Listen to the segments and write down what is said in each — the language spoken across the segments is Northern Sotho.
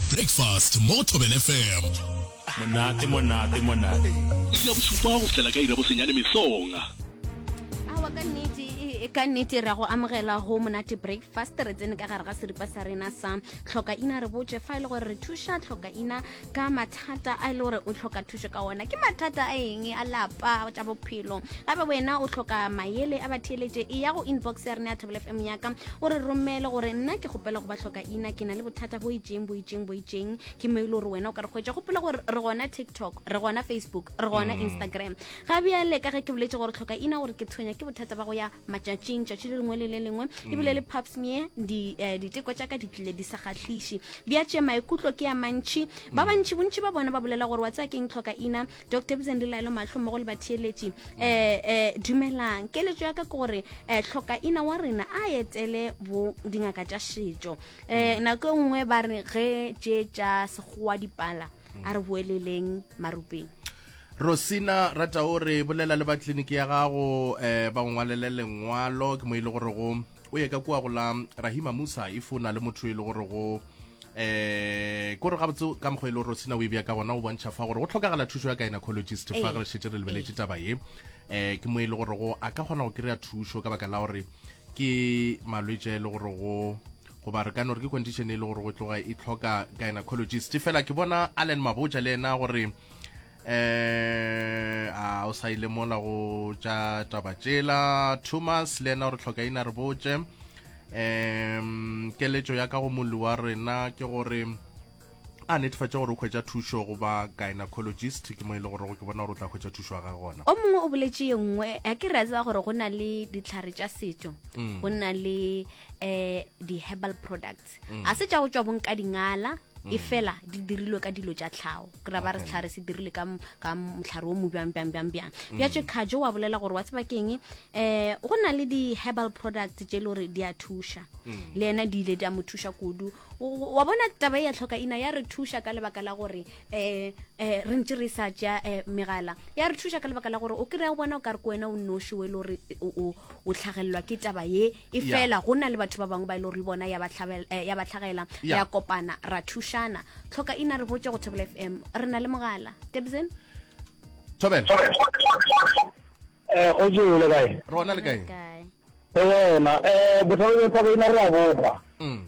Breakfast mo Thobela FM. Monate, monate, monate. Iri ya bosupa go fihlela ka iri ya bosenyane mesong. awa ka nnete e- e- ka nnete ra go amogela go monate breakfast re tsene ka gare ga seripa sa rena sa tlhokaina re botse fa e le gore re thuša tlhokaina ka mathata a e le gore o tlhoka thušo ka ona ke mathata a eng a lapa tša bophelo gabe wena o tlhoka mayele a batheeletše e ya go inbox ya rena ya thobel fm yaka o re romele gore nna ke kgopela go ba tlhoka ina ke na le bothata bo itšeng bo itšeng bo itšeng ke mo e le gore wena o ka re kgwetša gopola gore re gona tiktok re gona facebook re gona mm. instagram ga bjale ka ge ke boletse gore tlhoka ina gore ke tshwenya ke bothata ba go ya matšatšing tšatši le lengwe le le lengwe mm. ebile le paps me eh, diteko tša ka di tlile di sa kgatlhiše bja tše maikutlo ke ya mantšhi ba mm. bantšhi bontšhi ba bona ba bolela gore wa tsaya keng tlhoka ina dok tebiseng lelaelo mahlo mmogo le batheeletši um um dumelang keletso ya ka ke gore um tlhokaina wa rena a etele bo dingaka tša setšo um nako e nngwe ba re ge tše tša sekgowa dipala a re boeleleng marupeng rosina rata o re bolela le ba tleliniki ya gago um ba ngwalele lengwalo ke mo e le gore go o ye ka kua go la rahima musa if o na le motho e le gore go eh kore ga botse ka mokgwa e le gore sena o e ka gona o bontšha fa gore go tlhokagala thušo ya gynecologist fa re šetse re lebeletše taba ye eh ke mo e le gore go a ka kgona go kry-a thušo ka baka la gore ke malwetse a e le gore go goba re ka no re ke condition e le gore go tloga e tlhoka gynecologist fela ke bona allen maboja le ena gore eh a o sa ile mola go tša taba tšela thomas le ena o re tlhoka ina re botše um keletšo ya ka go molli wa rena ke gore a netefatša gore o kgwetsa thušo go ba gynecologist ke mo e le gore ke bona gore o tla kgwetsa thušo ya gage gona o mongwe o boletse ye nngwe a ke re a tseba gore go na le ditlhare tša setso mm. go na le um di-herbal products Arts mm. a se tša go tšwa bong ka dingala mm. e fela di dirilwe ka dilo tša tlhago ke ra ba re setlhare se dirile ka motlhare o mobjang bjang bjang bjang mm. bja tše kgajo wa bolela gore wa tseba keng um go na le di-herbal products tše e le gore di a thuša mm. le ena di ile di a mo thuša kudu wa bona taba e ya tlhoka ina ya re thuša ka lebaka la gore um um re ntse re sa ja um eh, megala ya re thuša ka lebaka la gore o kry-a go bona o ka re ko wena o noši o e le gore o tlhagelelwa ke taba ye e fela go na le batho ba bangwe ba e le gore bona ya ba eh, tlhagela ya kopana ra thušana tlhoka ina re botse go thobel f m re na le mogala tebsen thobel eh, go jele kae rona le kae go wena um botlhabo jwa thabeina re a bogwa mm.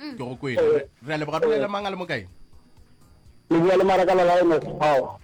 mm. ke go kwele eh. re a leboga re le mang a le mokae le bua le maraka la lae motho ao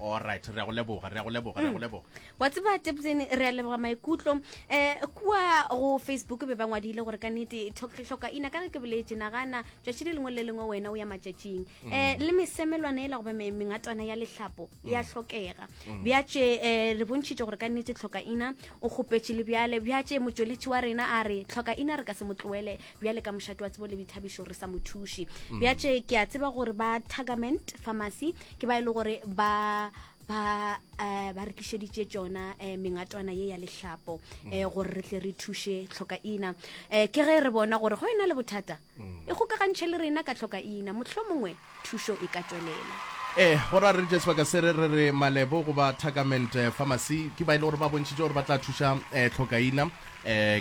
alright re go leboga re go leboga re go mm. leboga wa tseba tepsene re a leboga maikutlo um eh, kua go facebook be ba ngwadile gore ka nete tlhoka ina ka re ke boletse nagana tšatši le lengwe le lengwe wena o ya matšatšing um le mesemelwana e la goba mengatana ya lehlapo mm. ya tlhokega bjatše um re bontšhitše gore ka nete tlhoka ina o kgopetše le bjale bjatše motšweletši wa rena a re tlhoka ina re ka se mo tloele bjale ka mošate wa tsebo le boithabišo re sa mo thuše mm. bja tše ke a tseba gore ba tagament pharmacy ke ba e le gore ba ba uh, ba re tlišeditše tšona uh, mengatwana ye ya lehlapo uh, gore re tle re thuše tlhoka ina uh, ke ge re bona gore go ena le bothata mm. e kgokagantšhe le rena ka tlhoka ina motlho mongwe thušo e ka tšwelela. Ee, go ra re tšee sebaka se re re malebo goba Tacament Pharmacy ke ba e le gore ba bontšhitše gore ba tla thuša hlokaina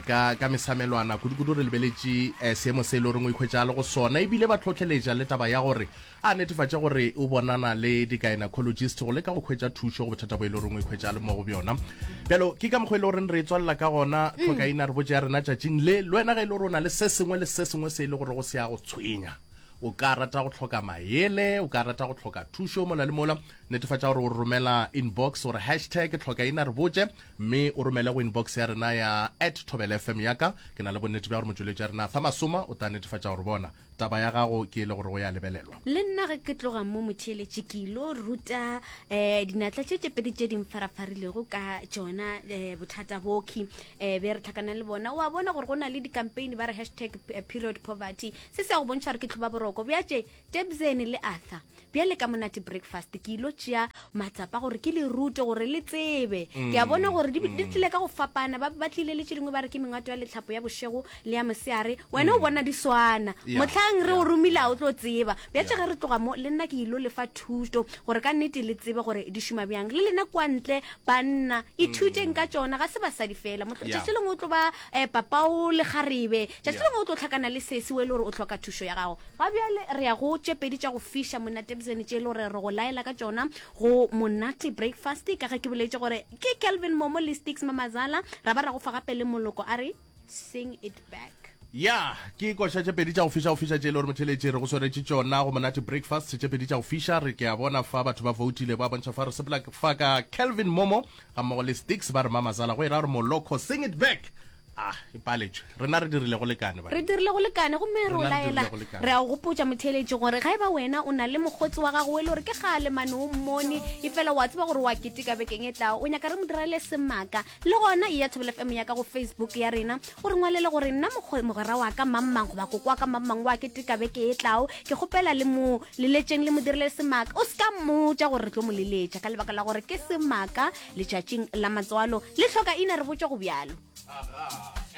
ka ka mesamelwana. Kudukudu re lebeletše seemo se e le goreng o ikhwetša a le go sona e bile ba hlohleletša le taba ya gore a netefatše gore o bonana le di-gynacologist go leka go khwetša thušo go bothata bo e le goreng o ikhwetša a le mo go bjona. Bjalo ke ka mokgwa e le goreng re e tswalela ka gona hlokaina re botše ya rena tšatšing le. Le wena ge e le gore o na le se sengwe le se sengwe se e le gorego se a go tshwenya, o ka rata go tlhoka maele o ka rata go tlhoka thušo mola le mola netefatša gore o re romela inbox gore hashtag ke tlhoka ina re botse mme o romele go inbox ya rena ya at tobel fm yaka ke na le bonnete bja gore motšweletši ya rena fa masoma o tla netefatša gore bona taba ya gago ke e le gore o ya lebelelwa le nna ge ke tloga mo motšheletši ke ilo ruta um dinatla tše tše pedi tše di mfarafarilego ka tšona um bothata boki um be re tlhakana le bona wa bona gore go na le dikampane ba re hashtag period poverty Se se a go bontšha gore ke tlhoba boroko bja tše Tebzeni le Arthur. Bjale ka monate breakfast ke ilo tšea matsapa gore ke le rute gore le tsebe. Ke a bona gore di, di tlile ka go fapana. Ba, ba tlile le tše dingwe ba re ke mengwato ya letlhapo ya bošego le ya moseare. Wena o bona di swana. Yeah, Mohlang re yeah. o romile a o tlo tseba. Bja tše ge re tloga mo, le nna ke ilo le fa thuto gore ka nnete le tsebe gore di šoma bjang. Le lena kua ntle, banna, ithuteng ka tšona. Ga se basadi feela. Mohl, Yeah. Tšatši lengwe o tlo ba eh, papao le kgarebe. Tšatši lengwe o tlo hlakana le sesi wo e le gore o hloka thušo ya gago. Ga bjale re ya go tše pedi tša go fiša monatebzene tše e le gore re go laela ka tšona go Monate Breakfast ka ge ke boletše gore ke Kelvin Momo le Sticks Mamazala ra ba ra go fa gape le moloko a re Sing it back. Ya, ke koša tše pedi tša go fiša go fiša tše e le gore motheeletši re go swaretše tšona go Monate Breakfast tše pedi tša go fiša. Re ke a bona fa batho ba voutile ba bontšha fa re sepela fa ka Kelvin Momo gammogo le Sticks ba re Mamazala go e ra gore moloko Sing it back. Ah, e paletšwe rena re dirile go lekane re dirile go lekane gomme re o laela re a o gopotsa motheeletši gore ga e ba wena o na le mokgotsi wa gago o e le gore ke ga lemane o mmone e fela wa tseba gore wa keteka bekeng e tlago o nyaka re mo direle semaka le gona e ya thobela fm ya ka go facebook ya rena o re ngwalele gore nna mogwera wa ka mammang goba koko wa ka mammang wa keteka beke e tlago ke kgopela le mo leletšeng le mo dirile semaka o se ka mmotsa gore re tlo mo leletša ka lebaka la gore ke semaka letšatšing la matswalo le hloka ina re botša go bjalo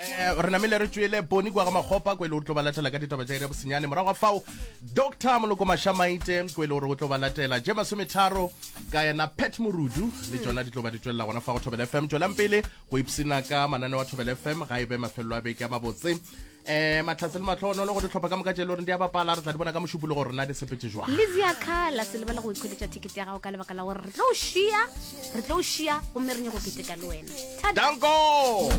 eh, re namile re tšwele boni kwa ga makgopa ko e le gore tlo ba latela ka ditaba tša ire bosenyane morago ga fao doctor moloko mashamaite ko e le gore o tlo ba latela je masometharo ka yena pet morudu le tsona di tlo ba di tswelela gona fa go thobela fm tswelang pele go ipsena ka manane wa thobela fm ga e be mafelelo a beke a mabotse eh matlhatse le matlhogonolo go ditlhopha ka moka tše e le goreng di a bapala re tla di bona ka mošupolo gore na di sepetse jwang lizia kala se lebala go ikgweletša ticket ya gago ka lebaka la gore re tlo o šia re tlo o šia gomme re nyako keteka le wena danko